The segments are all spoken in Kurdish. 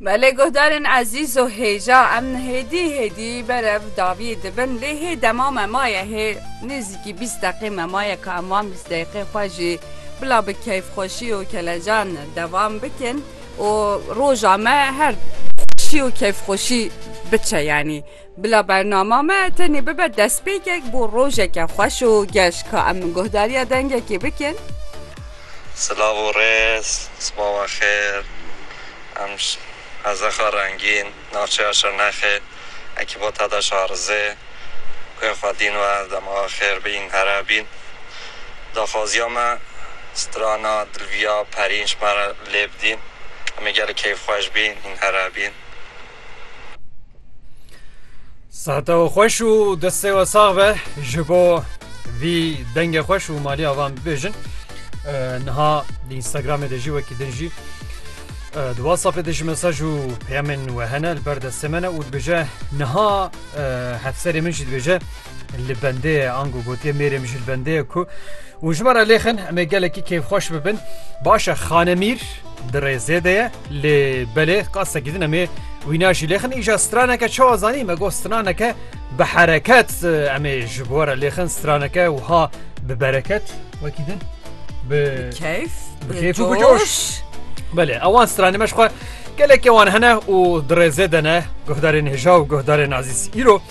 Me lê guhdarên ezîz û hêja em hêdî hêdî berev davî dibin lê hê dema me maye hê nêzîkî bîst deqê me maye ka em wan bîst deqê xwe jî bila bi keyfxweşî û kelecan devam bikin û roja me her xweşî û keyfxweşî biçe yanî. Bila bernama me tenê bibe destpêkek bo rojeke xweş û geş ka em guhdariya dengekê bikin. Silav û rêz, sbawa xêr. Em ji Hezexa Rengîn, navçeya Şirnexê, ekîba te de şarizê. Guhê xwedîn we dema xêr bîn, here bîn. Daxwaziya me strana Dilviya Perîn ji me re lê bidîn. Em ê gelek keyfxweş bîn, hîn here bîn. Sahte û xweş û destê we sax be ji bo vî dengê xweş û maliya van bibêjin. Niha di Instagramê de jî wekî din jî di WhatsAppê de jî mesaj û peyamên we hene li ber destê me ne û dibêje niha hevserê min jî dibêje li bendê ango gotiye mêrê min jî li bendê ye ku û ji me re lêxin em ê gelekî kêfxweş bibin baş e xanemîr di rêzê de ye lê belê qasekî din em ê wîna jî lêxin îja straneke çawa zanî me got straneke bi hereket em ê ji bo re lêxin straneke wiha bi bereket wekî din bi keyf bi keyf û bi coş belê ewan stranê me ji xwe gelekê wan hene û di rêzê de ne guhdarên hêja û guhdarên azîz îro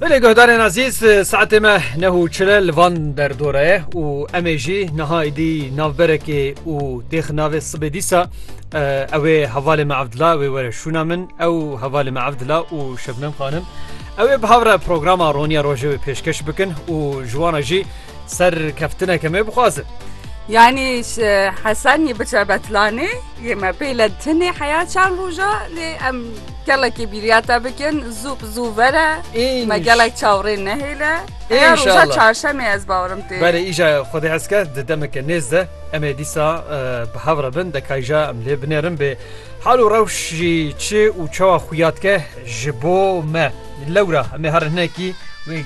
Belê guhdarên azîz saetê me neh û çile li van derdora ye û em ê jî niha êdî navberekê û têxi navê sibê dîsa ew ê hevalê me evdila wê were şûna min ew hevalê me evdila û şebnem xanim ew ê bi hevre programa roniya rojê wê pêşkeş bikin û ji wana jî Ser keftineke me bixwazin. Yanî Hesenî biçe betlanê yê me pê le tinê heya çend roja lê em gelekî bîriya te bikin zû bi zû vere me gelek çawrê nehêle ya roja çarşemê ez bawirim tê Berê îja xwedê hezke di demeke nêz de em ê dîsa bi hev re bin dekayja em lê binerin bê hal û rewş jî çi û çawa xuya dike ji bo me lewra em ê herin hinekî wê